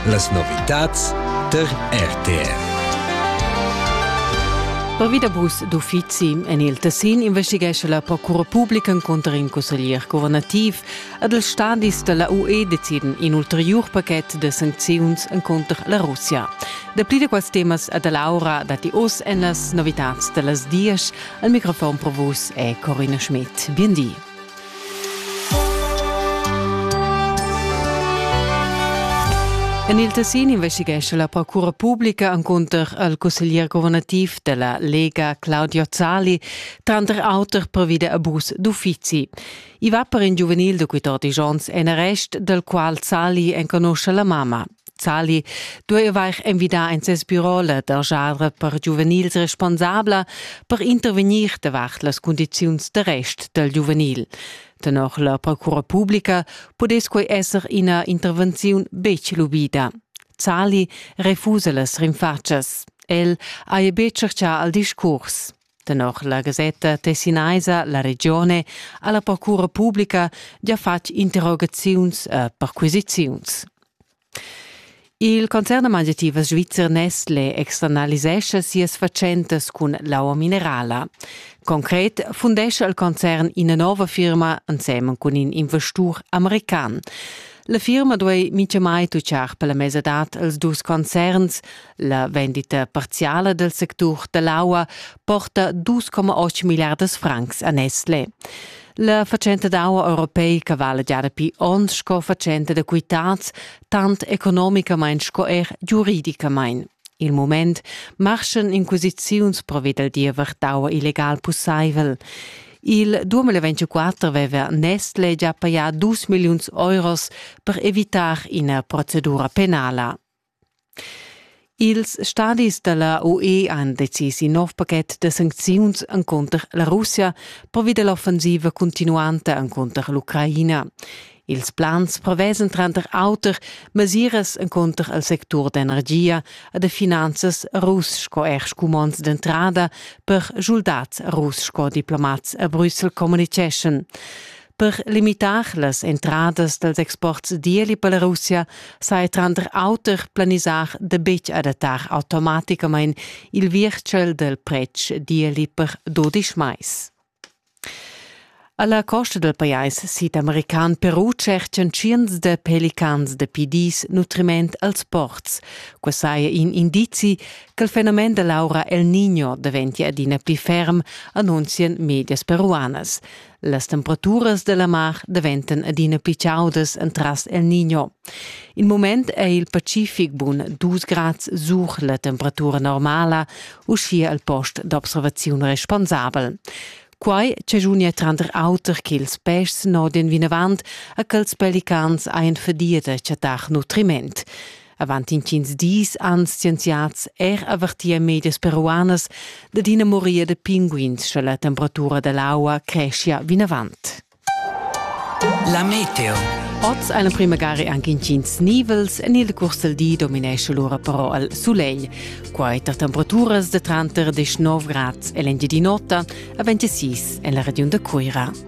Las novitads tar RTR. Pervi da bus d'uffizi en il Tessin investighescha la Procura Publica cunter in cusseglier guvernativ. Ad els stadis da la UE deciden in ulteriur pachet da sancziuns cunter la Russia. Dapli da quels temas a da Laura datti oz en las novitads da las dias. Al microfon pro vus è Corina Schmidt. Bien di. En il Tessin investighescha la procura publica encunter al cusseglier governativ della Lega Claudio Zali tranter auter pervi da abus d'uffizi. I va per in giuvenil da 14 onns en arrest, dal qual Zali enconusce la mamma. Zali dueva eir invidar in ses bürola da genre per giuvenils responsabla per intervegnir davart las cundiziuns d'arrest dal giuvenil. Tenor la procura publica pudess quei esser ina intervenziun betg lubida. Zali refusa las rinfatschas. El haja betg tscherchà al discurs. Tenor la gasetta tessinaisa La Regione ha la procura publica gia fatg interrogaziuns e perquisiziuns. Il concern da mangiativas svizzer Nestle externalisescha sias fatschentas cun l'aua minerala. Concret fundescha il concern ina nova firma ensemen cun in investur american. La firma duei mintgamai tutgar per la mesadad els dus concerns, La vendita parziala del sectur dell'aua porta 2,8 milliardas francs a Nestle. La fatschenta d'aua europeica vala già dapi onns sco fatschenta da quitads, tant economicamain sco er giuridicamain. Il moment marschan inquisiziuns provi dal diever d'aua illegal pussaivel. Il 2024 veva Nestle già pajà 2 milliuns euros per evitar ina procedura penala. Ils stadis dalla UE han decis in nov paket da sancziuns encunter la Russia pervi dall'offensiva cuntinuanta encunter l'Ucraina. Ils plans prevesan tranter auter mesiras encunter il sectur d'energia e da finanzas russ sco er scumonds d'entrada per schuldads russ sco diplomats a Brüssel communiceschan. Per limitar las entradas dals exports d'ieli per la Russia saja tranter auter planisà da betg adattar automaticamain il virtgel dal pretsch d'ieli per dudisch mais. Alla costa del pajais sidamerican Peru cerchan tschients da pelicans da pidis nutriment als ports. Qua saja in indizi che il fenomen da l'aura El Niño daventia adina pli ferm, annunzian medias peruanas. Las temperaturas della mar daventan adina più chaudas entras el Niño. In moment è il Pacific bun 2 grad sur la temperatura normala, uschia al post d'observaziun responsabel. Quai chagiunia tranter auter che ils peschs nodien vinavant a quels pelicans ein fadia da chattar nutriment. Avant intgins dis han scienziads er avertì a medias peruanas dad ina moria da pinguins, sche la temperatura da l'aua creschia vinavant. La meteo. Oz ein prima gare anche intgins nivels en il curs del di dominesce lura però al sulegl. Quai tar temperaturas de tranter 19 grads e l'engi di notte a 26 en la regiun de Cuira.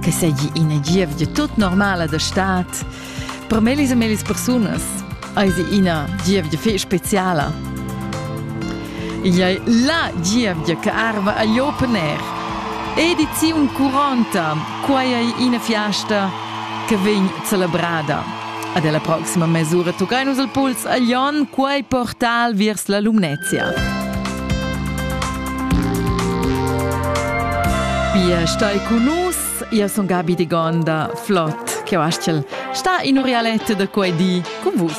che seigi ina gievgia tut normala da stad. Per melis e melis persunas eisi ina gievgia fei speciala. Igl ei la gievgia che arva agl open air. Ediziun 40, quai ei ina fiasta che vegn celebrada. Ad la proxima mesura toccain nus il puls a Lyon, quai portal vers la Lumnezia. Pia stai con nus, io son Gabi de Gonda, flott, che Sta in orialette da quei di con vus.